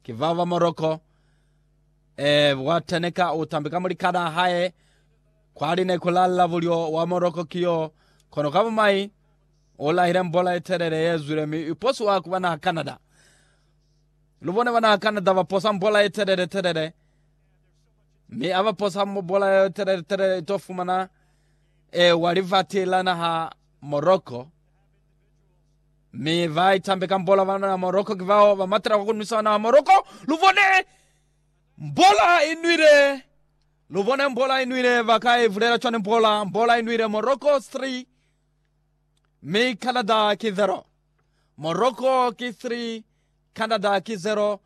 Ki bao ba Morocco, ee, bwata ne ka utambi ka mulikana hae, kwali ne ku lalla bulyo wa Morocco ki yo, kono ka bumai u lahile mbola ye telele ye zwile mi i posiwa ku bana Canada. Lu bone bana Canada ba posa mbola ye telele telele, mi a ba posa mbola ye telele telele ito fumana ee wa livati la naha Morocco. Mi ba itambe ka mbola bana na Morocco ki bao ba matela kwa ku nwisa bana ba Morocco. Lu bone mbola i nwile, lu bone mbola i nwile, ba ka i vulela cwani mbola? Mbola i nwile Morocco 3 mi Canada ki 0. Morocco ki 3 Canada ki 0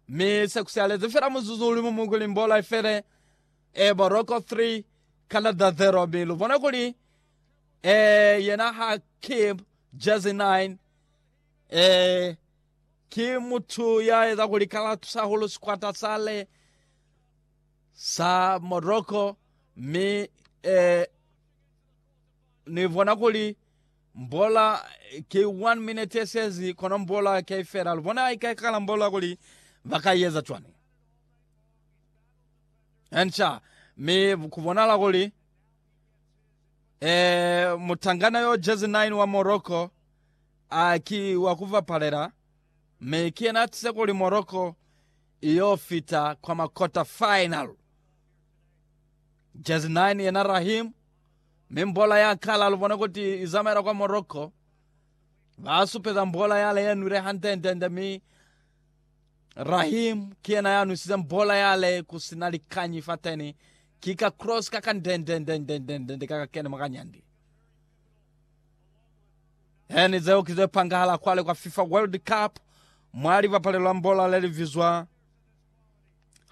mi se ku sialezi fela muzuzu uli mumu kuli mbola i fele. E Morocco 3 Canada 0 mi lu bone kuli Ee, yena ha ki jezi 9. Ee, ki mutu ya eza kuli kalatusa hahulu sikwata sale sa Morocco, mi ee, ni bona kuli mbola ki 1 minute ye sezi, kono mbola ki ai fela. Lu bona haika kala mbola kuli ba ka ieza cwani. Enca, mi ku bonala kuli. Ee, mutangana yo jezi 9 wa Morocco a ki wa ku bapalela, mi ki yena a tize kuli Morocco i yo fita kwa ma quarter final. Jezi 9 yena Raheem, mi mbola ya kala lu bona kuti i zamaela kwa Morocco. Ba supeza mbola yale ye nwile hande-nde-nde mi Raheem ki yena ya nwisizeng bola yale ku si na likanyi fateni, ki ka cross ka ka ndendendendendende ka ka kene mwa kanyandi. Eni zeo ki ze pangahala kwale kwa FIFA World Cup mwa libapalelo la bola le li bizwa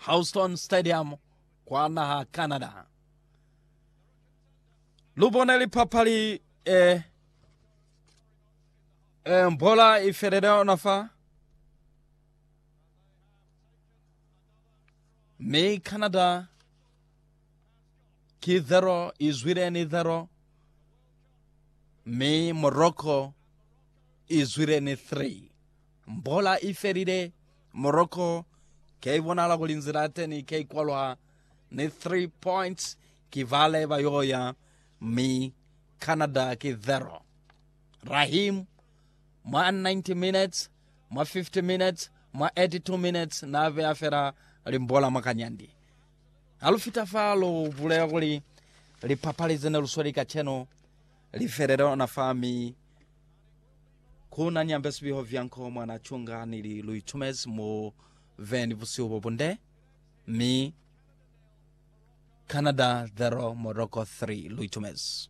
Houston Stadium kwa naha Canada. Lu bone lipapali eh, Eh, mbola i felele ona fa. Mi Canada ki zero, i zwile ni zero. Mi Morocco i zwile ni three. Mbola i felile. Morocco ke i bonala kuli nzila ya teni ke i kwalwa ni three points. Ki vale ba yoya. Mi Canada ki zero. Rahim, mwa 90 minutes, mwa 50 minutes, mwa 82 minutes na beya fela limbola mwa kanyandi. Ha lu fita fa lu bulela kuli lipapali zene lu sweli kacenu li felela ona fa mi ku na nyambe sibiho vyanko mwa na cunga nili lu itumezi mu ve ni busihu bo bunde mi Canada 0 Morocco 3 lu itumezi.